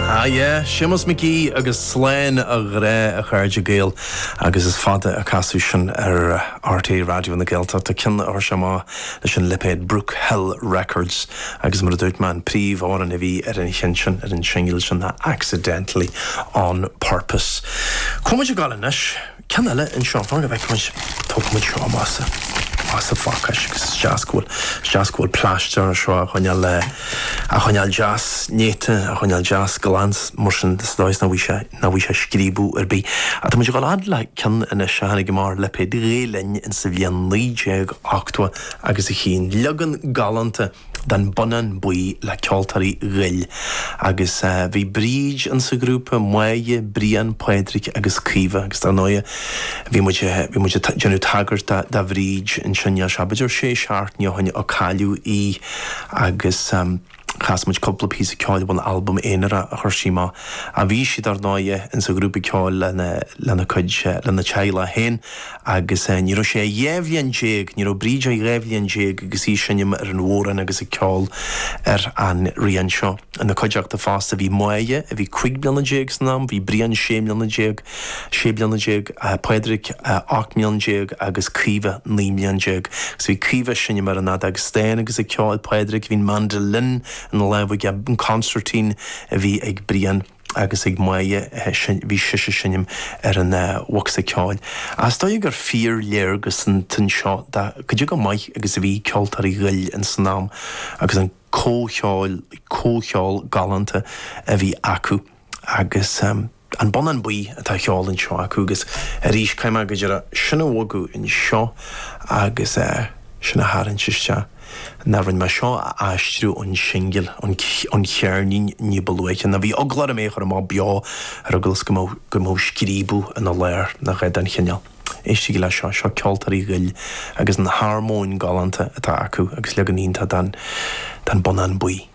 Ah yeah, Séamus McGee agus Slán a Ghrá a chairde Gael agus is fada ó casadh sin ar RTÉ Raidió na Gaeltachta, ceann a chuir sé amach leis an lipéad Brook Hill Records agus mar a dúirt mé an príomhamhrán a bhí ar an cheann sin, ar an tsingil sin ná Accidentally On Purpose. Cá bhfuil muid ag gabháil anois. Ceann eile anseo, fan go bhfeicfidh muid, tógfaidh muid seo amach as an phacáiste agus is deas go bhfuil, is deas go bhfuil plaisteach anseo a choinneáil le, a choinneáil deas néata, a choinneáil deas glan mar sin sa dóigh is nach bhfaighidh sé, nach bhfaighidh sé scríobadh ar bith. Ach tá muid ag dul fhad le ceann anois a tháinig amach ar lipéad Ghael Linn in sa bhliain 1980 agus a chinn leagan galánta, den Bonnán Buí le Ceoltóirí Ghoill agus bhí Bríd insa ghrúpa, Maia, Brian, Pádraig agus Caoimhe agus dar ndóigh bhí muid, bhí muid ag déanamh tagairt do Bhríd ansin, níl sé, b'fhéidir sé seachtaine ó shin a cailleadh í agus chas muid cúpla píosa ceoil ón albam aonair a chuir sí amach. Bhí sí dar ndóigh insa ghrúpa ceoil lena cuid, lena teaghlach féin Agus ní raibh sí ach dhá bhliain déag, ní raibh Bríd ach dhá bhliain déag agus í ag seinm ar an bhodhrán agus ag ceol ar an rian seo. Ina cuideachta fosta bhí Maia a bhí cuig bliana déag san am, bhí Brian sé mbliana déag, sé bliana déag, Pádraig ocht mbliain déag agus Caoimhe naoi mbliain déag. Agus bhí Caoimhe ag seinm ar an fheadóg stáin agus ag ceol, Pádraig, bhí an mandolin ina lámh aige, an consairtín a bhí ag Brian. agus ag Maia bhí sise ag seinm ar an bhocsa ceoil. Is dóigh gur fíorléargas an ceann seo de cad é chomh maith agus a bhí Ceoltóirí Ghoill in san am agus an comhcheol, comhcheol galánta a bhí acu agus an Bonnán Buí atá á cheol anseo acu agus arís caithfidh mé go díreach sin a bhogadh anseo agus sin a tharraingt isteach. Ná rinne mé seo a aistriú ón singil, ón cheirnín ní ba luaithe, ná bhí eagla orm é a chur amach beo ar eagla is go mbeadh scríobadh ina lár ná a dhath den chineál. Éistigí leis seo, seo Ceoltóirí Ghoill agus an harmóin galánta atá acu agus leagan iontach den den Bonnán Buí.